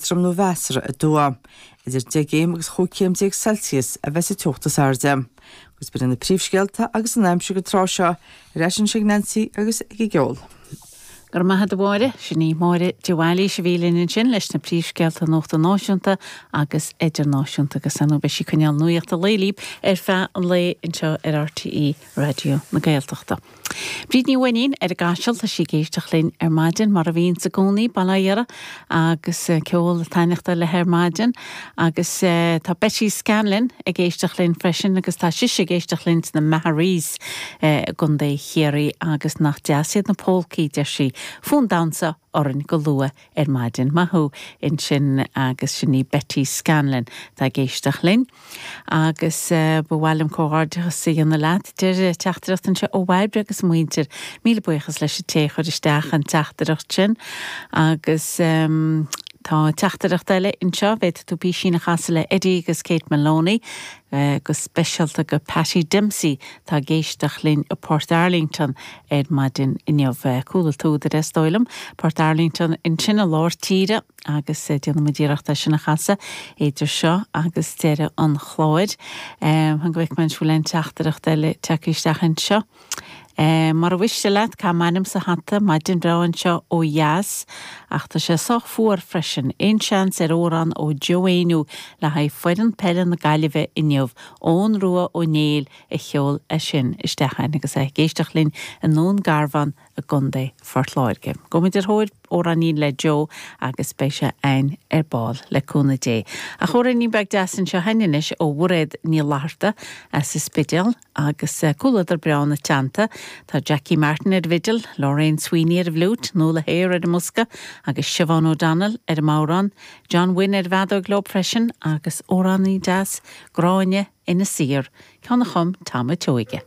Éadrom nó mheasartha aduaidh. Idir 10 gcéim agus 15 chéim Celsius a bheas an teocht is airde. Agus b'in iad na príomhscéalta agus an aimsir go tráth seo ar ais anseo ag Neansaí agus ag an gceol. Go raibh maith agat, a Mháire. Sin í Máire de Bhailís a bhí linn ansin leis na príomhscéalta nuachta náisiúnta agus idirnáisiúnta agus ar ndóigh beidh sí ag coinneáil nuaíocht an lae libh ar feadh an lae anseo ar RTÉ Raidió na Gaeltachta. Bríd Ní Mhainnín ar an gCaiseal, tá sí ag éisteacht linn ar maidin, mar a bhíonns i gcónaí, bail ó Dhia uirthi agus ceol ag taitneachtáil léi ar maidin. Agus tá Betty Scanlon ag éisteacht linn freisin agus tá sise ag éisteacht linn sna Maharees i gContae Chiarraí agus nach deas iad na pólcaí, deir sí, fonn damhsa orainn go luath ar maidin. Maith thú ansin agus sin í Betty Scanlon atá ag éisteacht linn. Agus ba mhaith liom comhghairdeachas a dhéanamh leat. Deir teachtaireacht anseo ó Bhairbre agus a muintir, Míle buíochas leis an té a chuir isteach an teachtaireacht sin. Agus tá teachtaireacht eile anseo, bhféadfaidh tú písín a chasadh le Eddie agus Kate Maloney, go speisialta go Patty Dempsey atá ag éisteacht linn i bPortarlington. ar maidin inniu. Chuala tú the rest dóigh liom. Port Arlington ansin i lár tíre agus déanfaidh muid iarracht é sin a chasadh idir seo agus deireadh an chláir. Fan go bhfeicfidh mé an bhfuil aon teachtaireacht eile tagtha isteach anseo. Mura mhiste leat caith m'ainm sa hata, maidin bhreá anseo ó dheas ach tá sé sách fuar freisin. Aon seans ar amhrán ó Joe Éinniú le haghaidh foireann peile na Gaillimhe inniu? Eoin Rua Ó Néill. a sheol é sin isteach chugainn agus é ag éisteacht linn i nDún Garbhán i gContae Phort Láirge. Gabhfaidh muid ar thóir amhráinín le Joe agus beidh sé againn ar ball le cúnamh Dé. Ach amhráinín beag deas anseo againn anois ó Mhairéad Ní Fhlatharta as an Spidéal agus comhluadar breá ina teannta. Tá Jackie Martin ar an bhfidil, Lorraine Sweeney ar an bhfliúit, Nuala Hehir ar an mbosca agus Siobhán O'Donnell ar an mbodhrán. John Wynne ar an bhfeadóig leo freisin agus amhráinín deas, Gráinne Inis Oírr, ceann a chum Tom an tSeoige.